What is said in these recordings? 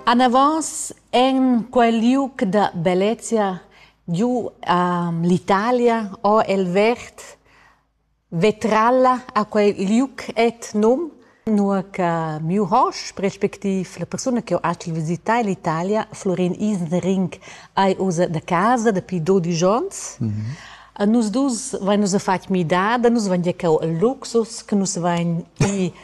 Anavos en quel liug da bellezia giu a l'Italia ho el verd vetralla a quel liug et num, nua che miu hosp respectiv la persuna che ho acil visità l'Italia, Florin Isnering, ei ussa da casa dapi dodisch onns. A nus dus vain nus a fatg midada, nus vain giacau al luxus, che nus vain i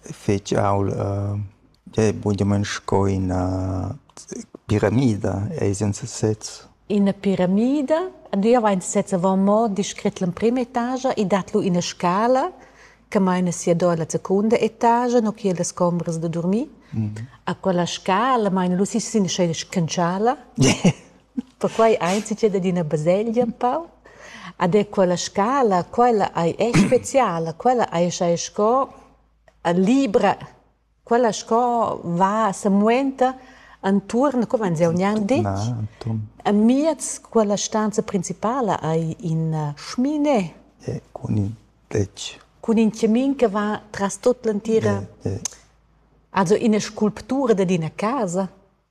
fetg aul bunamain sco ina piramida ei senza sez. Ina piramida? Nua vegn sez avon mo descret l'emprema etaga e dat lu ina scala che meina sia do alla secunda etaga, no che las combras da durmir. A quella scala meina lu si sin scena scantschala. Perquai ein ins entschet ad ina baselgia empau. Ed er quella scala, quella ei è speciala, quella ei schai sco libra, quella sco va semuenta entuorn, co vegns jeu gnanc detg. Amiez quella stanza principala ei ina schmine. Cun in tetg. Cun in chamin che va tras tut l'entira. Also ina sculptura dad ina casa.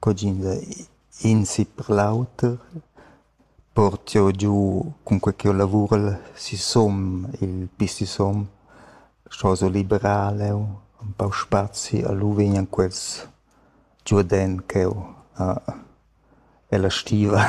Cugin da in si per l'auter port'jeu giu cunquei ch'jeu lavurel sisum il pi sisum, sco so liberar leu empau spazi a lu vegnan quels giu ad en cheu ella stiva.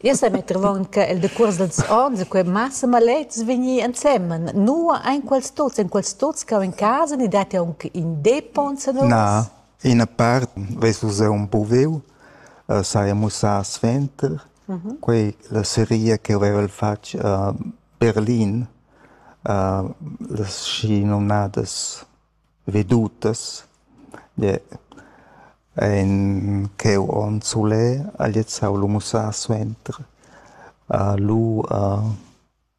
Io sa metter avon che el decuors dals onns e quei massa maletgs vegnir ensemen. Nua ein quels tuts? Ein quels tuts cau en casa ni dat jeu aunc in depon senors? Na. Ina part vess vus jeu empuviu, saja mussà suenter, quei la seria che havevel fatg a Berlin, las schinomnadas vedutas, ein cheu onn sulè, ha gliez saviu mussar suenter. Lu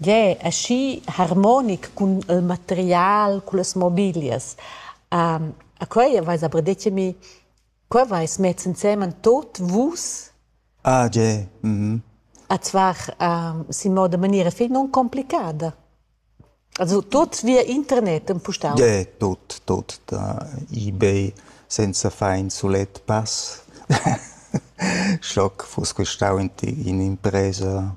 Gie, aschi harmonic cun il material, cullas mobilias. a quei aveis aber detg a mi, co aveis mess ensemen tot vus? Ah gie, mhm. Ats var sin moda maniera fetg nuncomplicada. Also tot via internet empustau. Gie, tot, tot da ebay senza far in sulet pass. Schlock fuss questau in impresa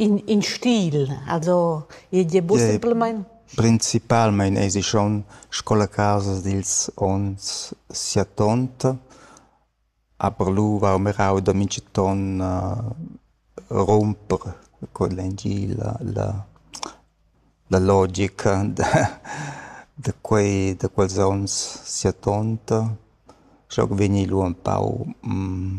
In, in stil, also igl è pussibelmain? Principalmein eisi schon sco la casa dils onns siattonta, aber lu va mirau da mintgaton rumper con l'engil la, la, la logica da, da, quei, da quels onns siattonta. Schau che vegni lu empau mm,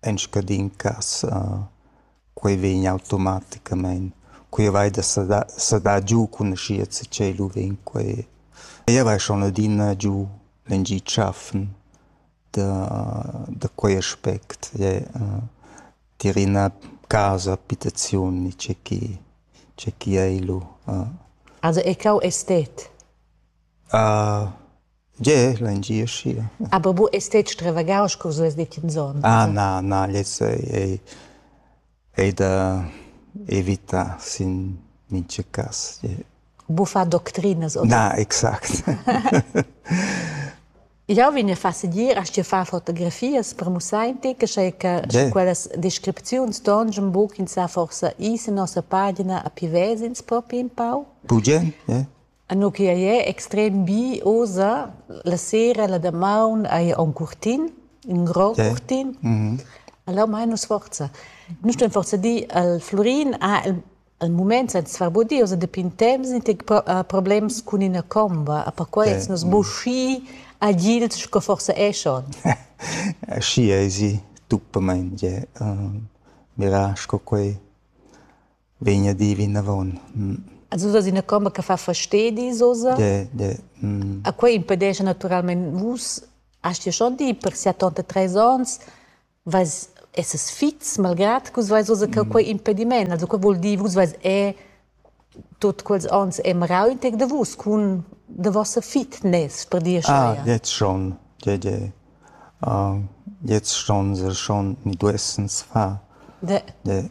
En scadin cass quei vegn automaticamein. Quei vai da sedar sedar giu cun aschia che tschel u vegn quei. Ella vai schon adina giu lengi tschaffen da da quei aspect. Tier ina casa abitaziun ni tgei che tgei che ei lu. Also è cau estet? Gie, l'engie aschi. Ah babu ei stet stravagaus sco vus lez detg enzon. Ah na, na, lez ei, ei da evitar sin mintga cass. Bufa doctrinas. Na, exact. Jau vegn a far segir aschia far fotografias per musainti che sei che quellas descripziuns ston schon buc in sa forsa is in nossa pagina a pivezins propi in pau. Bugen, ja. Eno che ei è extrem bi oza, la sera la damaun hai aunc curtin, in grond yeah. curtin. Mm -hmm. Allora mai nus forza. Nus ston forza di al Florin, ah, il, il moment sa svarbodi, oza depin temps nicht problems cun ina comba, a perquai yeah. nus mm. buschi agils sco forza è schon. Schi ei si, tuppemein, je, mira, sco quei vegn a dir vinavon. As usas ina comba che fa fastedis oza? De, de. Mm. A quei impedescha naturalmein vus Hast dir schon dir per setanta tres ans vais esses fits malgrad che vais oza che quei impediment also quei vuol dir vus vais è tot quels ans è merauntig de vus cun de vossa fitness per dir ah, jetzt schon de de uh, jetzt schon sehr schon mi duessens fa de de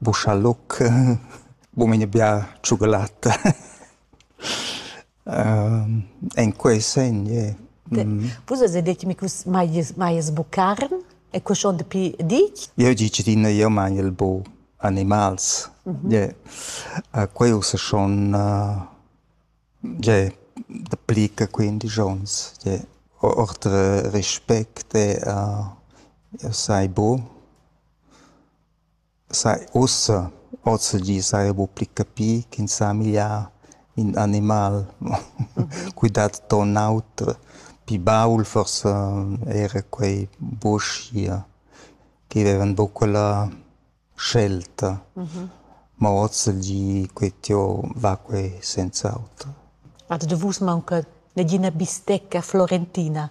Buschaloc, bu mei n'ai bia tschugalatta. En quei segn ie. Vus eis detg mi che vus maies maies bu carn e quei schon dapi ditg? Jeu di tschedina, jeu maiel bu animals. Ie. Quei ussa schon ie dapli che quindisch onns. Ie. Ord respect, jeu sai bu. Sai ussa, ozilgi saja buc pli capì ch'ins ha migliar in animal. Quei dat ton auter, pli baul forsa era quei buschia che vevan buc quella scelta. Mo ozilgi quei tieu va quei senz'auter. Ad vus maunca negina bistecca florentina?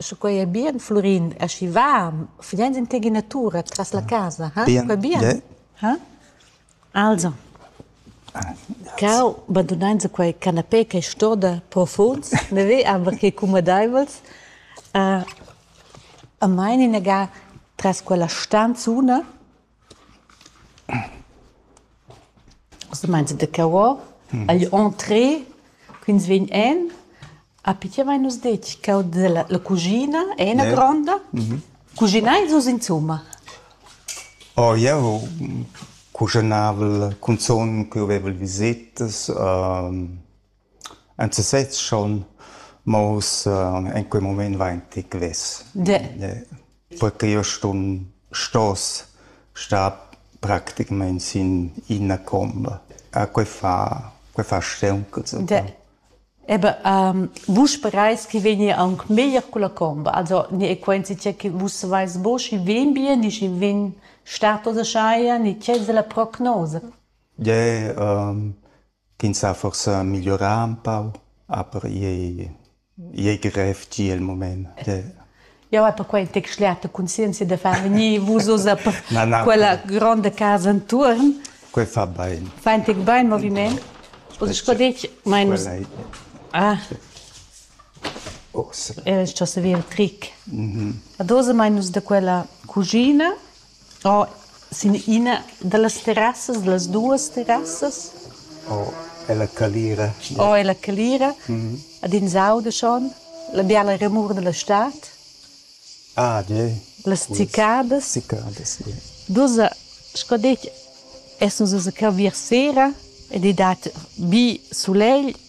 Sche quei ei bien, Flurin, aschi va, fidend en tgei natura tras la casa, ha? Quei bien? Ha? Also, cau, bandunein se quei canapé che stoda profunds, ne ve aber che cumadeivels, uh, a mein inaga tras quella stanzuna, Ussa mainza da cavò agl entree ch'ins vegn en api tgi avain nus detg cau dalla la cuschina è ina gronda. Cuschinais vus insumma? Oh jeu cuschunavel cunzun ch'jeu vevel visetas. En sesez schon, ma ussa in quei mument vain ti gliez. Perche io sun stos star practicamaing sin ina comba. A quei fa, quei fa steunc zucca. Ebe, um, vus sperais chi vegni aunc meglier culla comba, also ni è quenzi tgè che vus savais bo schi vegn bien, ni schi vegn stato da schaia, ni tgè es la prognosa? Ie, um, Ch'ins ha forsa migliorà ün pau, aber i ei grev gia il mument. Jau hai perquai detg schliata conscienzia da far vegnir vus oz a quella gronda casa enturn. Quei fa bain. Fa in tec bain moviment. Oz sco detg, mein nus... Ah. Era sto servir tric. Ad oz mein nus da quella cugina Oh, sin ina dallas terrassas, dallas duas terrassas. Oh, ella calira. Oh, ella calira. Mm Ad ins auda schon la biala remur dalla stad. Ah, de. Las cicadas. Cicadas, yeah. Dus, sco detg, essan se cavir sera ed ei dat bi sulegl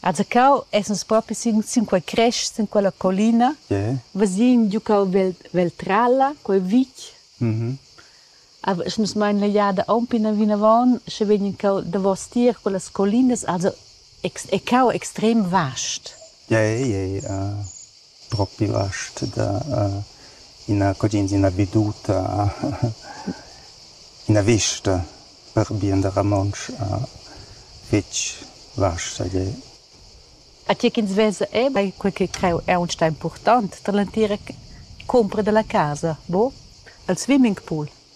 Azacau essens propi sin, sin quei crest, sin quella collina. Yeah. Vesin giucau Veltralla, quei vitg. Mm-hmm. Avies nus mein la jada aunc ina vinavon, sche vegnin cau davos tier quellas collinas, also e cau extrem vast. Yeah, yeah, yeah. Uh, propi last da ina cudienza, ina veduta, ina vista per bien da romontsch fetg vasta gie. A tgi ch'ins vesa era quei che creu aunc impurtant dall'entira cumpra dalla casa, buca? Il swimmingpool.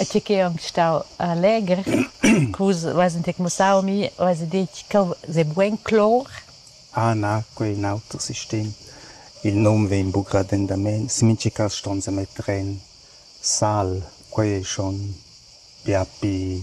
E tgi ch'ei aunc stau legher, vus veis detg mussau mi, veis detg ch'el sei bugen clor. Ah na, quei è in auter sistem. Il num vegn buc radendament, sin mintga cass ston semetter en sal, quei ei schon bia pi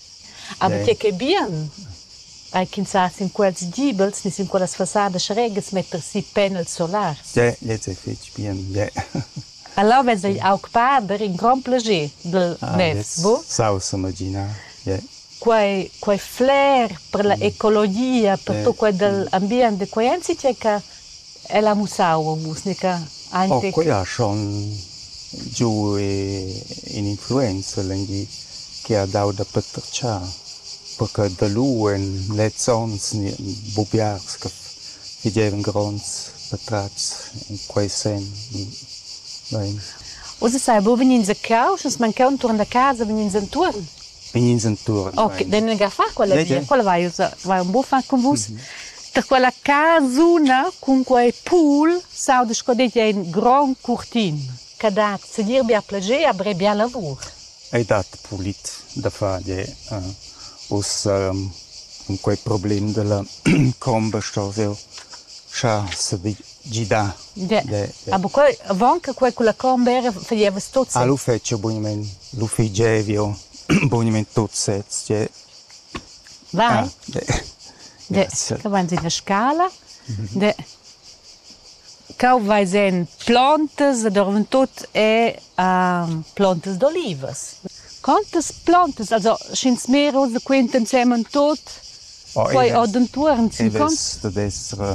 Aber tge ch'è bien, ei ch'ins sa sin quels gibels ni sin quellas fassadas regas metter si panel solar. Tge, lez è fetg bien, tge. Alaves ei aug pader in grond plager dal ah, mess, bu? Saus imaginar, yeah. quei, quei flair per la ecologia, per yeah. tot quei dal ambient de quei ensi tgei che El ha mussau musica aunc. Quei ha schon giu in'influenza legni che ha dau da patratgar, perquei da lu en lezs onns ni buc biars che fagevan gronds patratgs en quei senn. Uss sai buca vegnir zaccau, sche nus mancau entuorn da casa, vegn'ins entuorn. ins enturn. Ok, den ga fa quella via, quella vai, vai un buffa con vus. Per quella casuna cun quei pool sauda sco detg ein gron curtin. Che dat segir bia plager a bre bia lavur. Ei dat pulit da far de uh, ussa um, quei problem della comba sto veu. Scha se gidar. Ah, bu quei, avant che quei culla Cornbera faglieva tot sez. Ah, lu fetscha bugnament, lu figevio bugnament tot sez. Je. Vai. Grazie. Che van in la scala. De. Cau vai sen plantas, dormen tot e um, plantas d'olivas. Quantas plantas, also schins mehr oder quinten semen tot? Oh, quei od entuorn sin cons? da destra